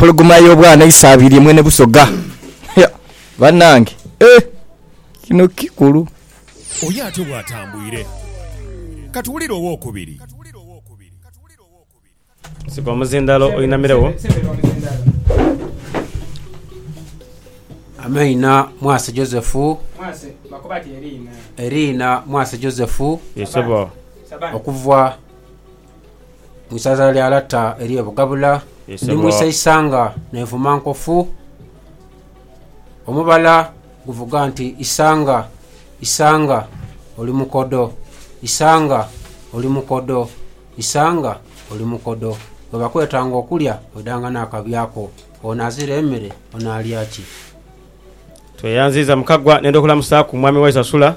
Empologoma y'obwana isaabiirye mwene Busoga. Hia! Banange eeh! Kino kikulu. Oyo ate bw'atambwire. Ka tuwulire ow'okubiri. Sika omuzindaalo oinamiregho. Amaina, Mwase Joseph. Eriina, Mwase Joseph. Yee sebo. Okuvwa Mu isaza lya lata ery'e Bugabula, ndi mu isa isanga n'envuma nkofu. Omubala guvuga nti isanga, isanga oli mukodo, isanga oli mukodo, isanga oli mukodo. Bwe bakwetanga okulya oidanga n'akabya ko. Ono azira emere onaalya ki? Tweyanziiza Mukagwa nenda okulamusaaku Mwami Waisa Sula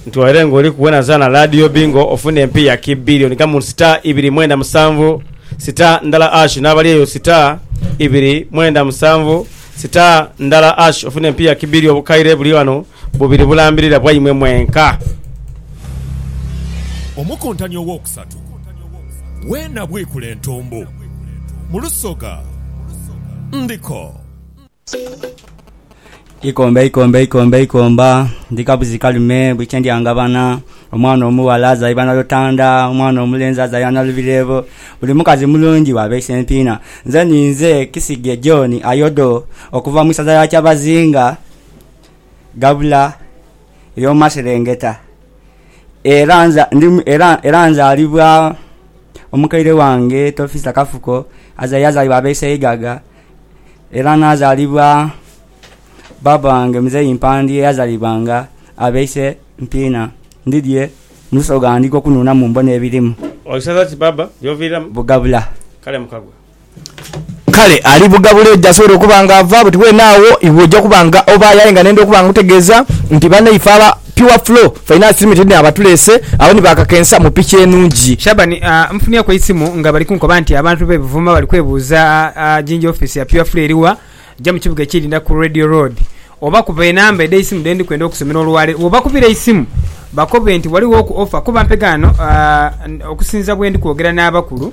nti waire nga oliku wena zaana Laadiyo Bingo ofune empi ya ki billion gamu sita ibiri mwenda musanvu sita ndala ash n'abali eyo sita ibiri mwenda musanvu sita ndala ash ofune empi ya ki billion obukaire buli ghano bubiri bulambirira bwaimwe mwenka. Omukuntani ow'okusatu weena bwikula entumbu mu lusoga ndiko. Ikomba ikomba ikomba ikomba ndi kabuzi kalume buli kye ndya ngabana omwana omughala azaibwa na lutanda omwana omulenzi azaibwa na lubireebo buli mukazi mulungi bwaba eisempiina nze ninze Kisige John Ayodo okuva mu isaza lya Kyabazinga gabula ery'omu maserengeta era nza ndi era nzalibwa omukaire wange Tofisa Kafuko azaibwa abeiseigaga Era naazaalibwa baaba wange Muzei Mpandi eyazalibwa nga abeise mpiina. Ndidhie mu lusoga ndika okunhunamu mbone ebirimu. Oisaza ki baaba gyoviiramu? Bugabula. Kale mukagwa. Kale ali Bugabula eyo gy'asobola okuba nga ava, buti weene agho iwe oja kuba nga ovaayo. Aye nga nenda okuba nga nkutegeeza nti banaife aba. Pure Flow Finance Limited ni abatuleese agho ni bakakensa mu piki enungi. Shaban, Nfunyeku eisimu nga bali kunkoba nti abantu b'e Buvuma bali kwebuuza jinja ofiisi ya Pure Flow eri wa, ja mu kibuga ekiidinda ku Radio Road oba kuba enamba edh'eisimu dhe ndi kwenda okusomera olwaleero. Bw'obakubira eisimu bakobe nti ghalighoku offa kuba mpegha ghano okusinziira bwendi kwogera n'abakulu.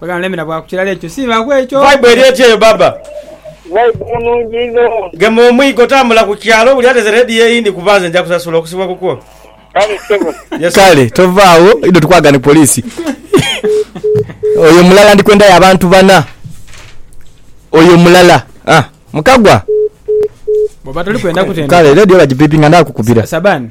Webale muleme na bwaku kilala ekyo singa ku ekyo. Vibe eri etya eyo baba. Vibe nungi inho. Gema omwigo tambula ku kyalo buli ateze radio eyindi kuba nze nja kusasula okusibwa kukwo. Kale ssebo. Yes sir. Kale tova agho idho tukwagala ni police Oyo mulala ndikwendayo abantu bana Oyo mulala ah mukagwa. Bwoba tolikwenda kutendeka. Kale radio bajipipinga ndha kukubira. Sabani.